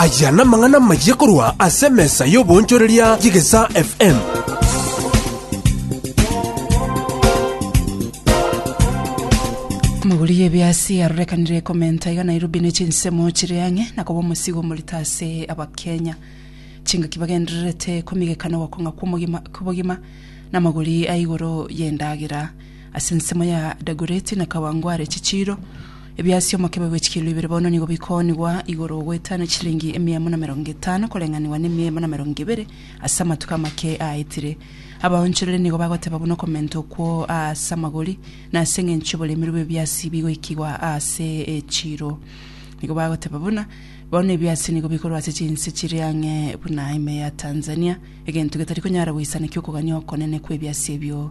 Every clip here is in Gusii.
Aya namang'ana amayia korwa ase emesa y'oboonchoreria y'Egesaa FM. Omoguri y'ebiasi arorekanire ekomenta iga Nairobi ne chinsemo chire ang'e na koba omosigo omorito ase abakenya. Chingaki bagendererete komigekana ogokong'a kw'omogima- kw'obogima na amagori a igoro y'endagera. Ase ensemo ya Dagoreti na Kawangware chichiiro, ebiasi omokebe bwe chikilo ibere bono nigo bikoonigwa igoro goetana chilingi emiemo na merongo etano koreng'anigwa na emiemo na merongo ebere ase amatuko amake aetire. Abaonchorere nigo bagoteba buna okomenta okwo aase amagori na ase engencho y'oboremeru bw'ebiasi bigoikigwa aase echiiro. Nigo bagoteba buna, Bono ebiasi nigo bikorwa ase chinse chire ang'e buna ime ya Tanzania, egento getari konyara goisaneki okogania okonene kw'ebiasi ebio.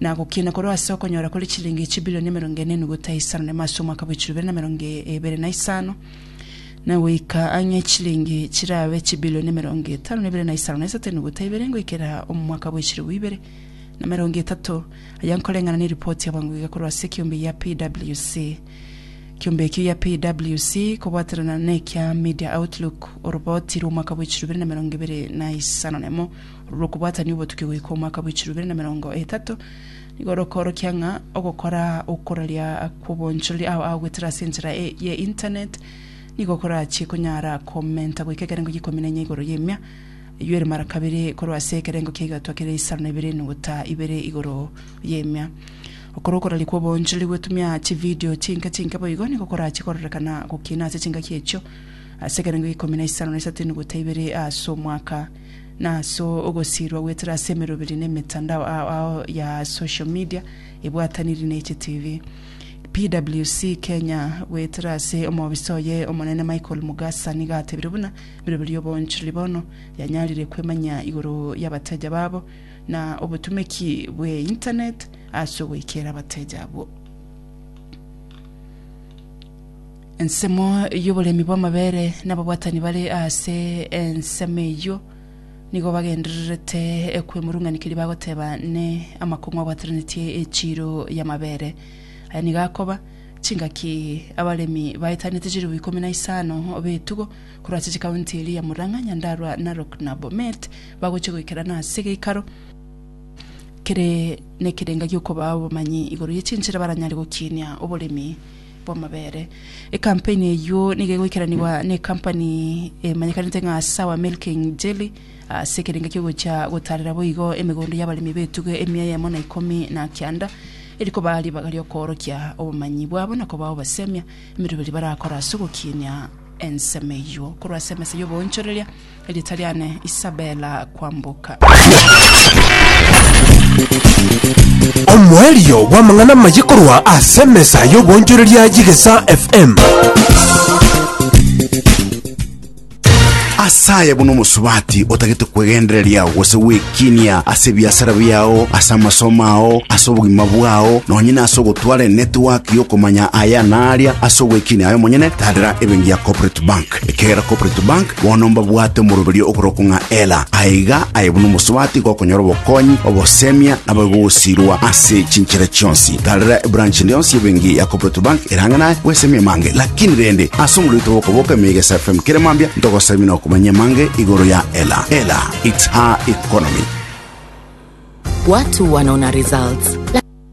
na gokina korwa ase okonyora kore chilingi chibilioni emerongo ene enuguta isano na ime ase omwaka bwa echirobe na emerongo ebere na isano na goika ang'e chilingi chirabe chibilioni emerongo etano na ebere na isano na isato enuguta ibere ngoikera omwaka bwa echirobu ibere na emerongo etato aya nkoreng'ana na eripoti ya bwango iga korwa ase ekiombe ya PWC kiombe ekio ya PWC kobwatanana na ekea Media Outlook oroboti rwa omwaka bwa echirobu ibere na emerongo ebere na isano na emo rw'okobwatania obotuki goika omwaka bwe chirobere na merongo etato, nigo rokoorokia ng'a ogokora okoraria kw'obonchorori ao agoetera ase enchera e, ye internet nigo korachie konyara komenta goika ekerengo g'ikomi na inya igoro y'emia eyio ere mara kabere korwa ase ekerengo ki'egatwa kere isano na ibere enuguta ibere igoro y'emia. Okora okoraria kw'obonchorori gwetumia chividio chinke chinke boigo nigo korachie kororekana gokina ase chingaki echio ase ekerengo g'ikomi na isano na isato enuguta ibere ase omwaka. na ase ogosiirwa goetera ase emeroberi na emetandao ao ao ya social media ebwataniri na eche TV. PWC Kenya goetera ase omobisa oye omonene Michael Mugasa nigo atebire buna emeroberi y'oboonchoreri bono yanyarire kwemanyia igoro y'abateja babo na obotumeki bwe internet ase ogoikeera abateja abwo. Ensemo y'oboremi bw'amabere n'ababwatani bare ase ensemo eyio nigo bagendererete kwemurung'ania keria bagoteba ne amakong'u abwatananetie echiiro y'amabere. Aya nigo akoba, chingaki abaremi baetanete chilifu ikomi na isano b'etugo korwa ase chikaunti eria ya Murang'a, Nyandarua, Narok na Bomet bagochia goikerana ase egeikaro kere nekerenga gi'okobaa obomanyi igoro ye chinchera baranyare gokiinia oboremi bw'amabere. Ekampeni eyio nigo egoikeranigwa n'ekampani emanyekanete ng'a Sour Milking Jelly ase ekerengo ki'ogocha gotarera boigo emegondo y'abaremi b'etugo emia eyemo na ikomi na kianda, eri koba ribaga ri'okoorokia obomanyi bwabo na kobao basemia emeroberi barakore ase ogokinia ensemo eyio. Korwa ase emesa y'oboonchoreria, Erieta riane Isabela kwamboka. Omoerio bw'amang'ana amaye korwa ase emesa y'obonchoreria y'Igesa FM. asaye buna omosubati otagete kwegendereria gose gwekinia ase ebiasara biao ase amasomo ao ase obogima bwao nonye na ase ogotwara enetiwaki yokomanya aya na aria ase ogwekinia aye omonyene tadera ebengi ya corporate bank ekegera corporate bank Bono mbabwate omoroberio oboroko ng'a Ela, aye iga aye buna omosubati gokonyora obokonyi, obosemia, na boigo ogosirwa ase chinchera chionsi. Tarera ebranch rionsi y'ebenki ya Cooperative Bank erange naye bw'esemi emange. Lakini rende, ase omorwete bw'okoboka emeiga ase FM kere mambia, ntogosabie na okomanya emange igoro ya Ela. Ela, it's her economy. Watu wanaona results.